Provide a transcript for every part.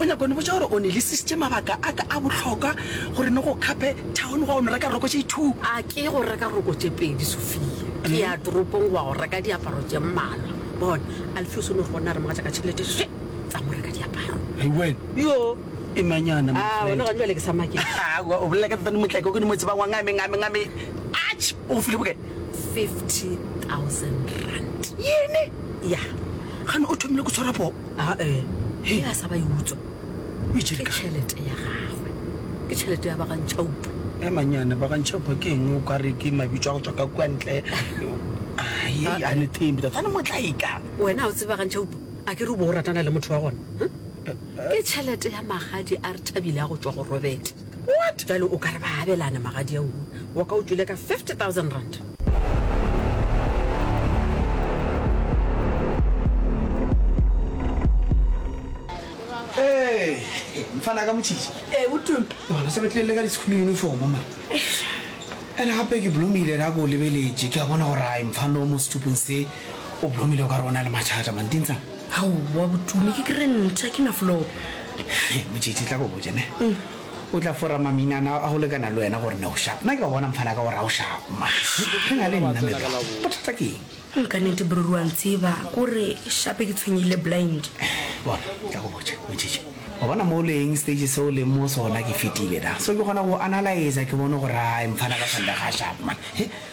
O nyaka go ni botša gore o ni lisisitše mabaka a ka a bohlokwa gore ni go Cape Town go ya go ni reka roko tše two? A ke go reka roko tše pedi, Sophia. Ke ya toropong go ya go reka diaparo tše mmalwa. Bona, Alpheus o no re go nna a re mogatša ka tšhelete še tsa mo reka diaparo. Hei wen! Yoo! E mang yana, my friend? A wena gane jwale ke sa maketše. Aowa, o bolela ka Thato Motleke o ke ni mo tsebang wa ngame, ngame, ngame. Atšh! O go file bokae? Fifty thousand rand. Yini? Ya. Gane o thomile go tshwara poo? ae ge a sa ba e utswa ke tšhelete ya gagwe ke tšhelete ya bagantšhaupa e manyane bagantšhaupa ke eng o ka re ke mabitso a go tswa ka kua ntle a ne thembi tsa tshwane motlaika wena o tseba gantšhaupa a ke re o bo o ratana le motho wa gona ke tšhelete ya magadi a re thabile a go tswa go robete What? Bjale o ka re ba abelane magadia wo wa ka o tšwile ka 50,000 rand. Ee, mfana ka motšhitši. Ee, go tuma. Bona se re tlile le ka di-school uniform ma. Ene gape ke blomile ra ko lebeletše ke a bona gore a mfana o mo setupong se o blomile o ka re o na le mathata mantintsa. Aowa Botume, ke kry ntha ke na floor. Hei, Motšetši, tla ko botše ne. O tla fora maminana a go lekana le wena gore ne o sharp. Nna ke a go bona mfana ka gore ga o sharp. Mash, re na le nna me bra. Bothata ke eng? Hum, ka nete bro re wa ntseba kore shape ke tshwenyehile blind. Bona, tla ko botše, Motšetši. O bona mo o leng, stage se o leng mo sona ke fetile na. So ke kgona go analyser ke bone gore hai mfana ka Sunday ga a sharp man. He.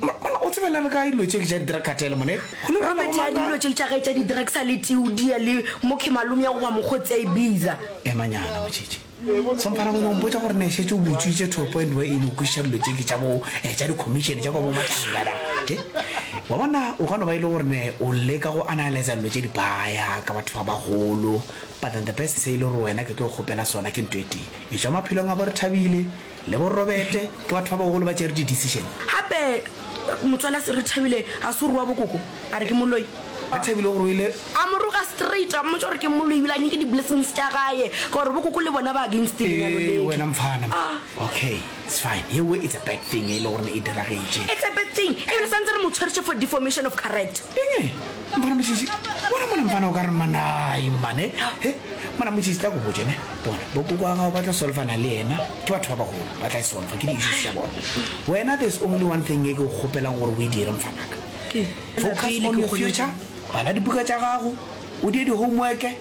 Mo- Monna, o tsebe le re ka dilo tše ke tša di-drug cartel mone. Go le bjalo, robert ya Maka. dilo tše tša gae tša di-drugs a le teudia le mokhe malome ya goba mokgotsi a e biza emanyana motšhetše somphara gone ompotsa gore ne šetse o botswitse to a point where e no kwešiša dilo tše ke tša bo eh, tša di-commission tša kwa bo matlangana okay wa bona o ka no ba e le gore ne o leka go analyza dilo tše di baya ka batho ba bagolo but then the best se e le gore wena ke tlo go kgopela sona ke nto e tee e tšwa maphelong a bo re thabile Le bo Robete ke batho ba bagolo ba tšere di decision. Gape motswala se re Thabile ga se o rua bokoko a re ke moloi. Ge Thabile o ruile. A mo roga straight a mmotša gore ke moloi ebile a nyake di blessings tša gae ka gore bokoko le bona ba against lenyalo Ee leke. wena mfana ma. Okay it's fine ye we it's a bad thing e le gore e diragetše. It's a bad thing ebile santse re mo tshweretše for deformation of character. Eng? Mfana Mosisi, bona mona mfana o ka re manai mane. He, mona Mosisi tla go botse ne. Bona, bokoko wa gago ba tla solfana le yena. Ke batho ba bagolo, ba tla e solfa, ke di-issues tša bona. Wena there's only one thing e ke go kgopelang gore o e dire mfanaka. Focus on your future, bala dibuka tša gago, o die di-homework,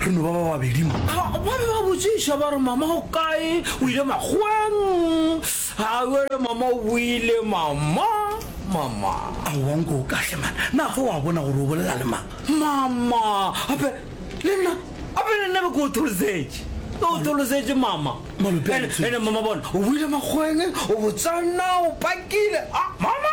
Re no ba ba babedi mo. Ba be ba botšiša ba re, Mama o kae? O ile makgoweng? A bjale mama o boile, mama, mama. Aowa nko o kahle mana, na fa wa bona gore o bolela le mang? Mama, ape le nna, ape le nna be ke o tholosetše, ke o tholosetše mama. Malope a Ene, ene mama bona, o boile makgoweng, o botsana, o pakile, a mama.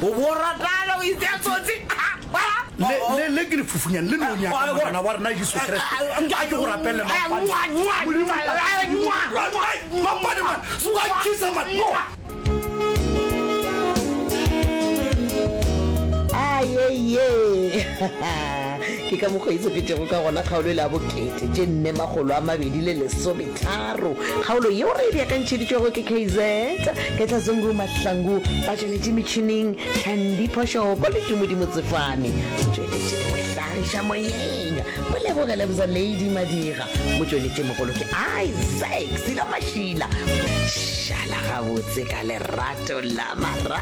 Boratana o itse a tsotsi. Le, le, le ke lefufunyane le no nyaka Morena wa rena Jesu Kriste. A ke go rapelle mapampane. Ayeiyee! Ke ka mokgwa e sepetšego ka gona kgaolo e le ya bokete tše nne makgolo a mabedi le lesome. Tharo, kgaolo yeo re e beakantšheditšwego ke KZ Ketlazungu Mahlangu, ba tšweletše metšhining Candy Phoshoko le Tumudi Motsefane, o tšweletše le go hlagiša moyeng o leboge Lebza Lady Madira, motšweletši mogolo ke Isaac Silo Mashila. Šala gabotse ka lerato la marago.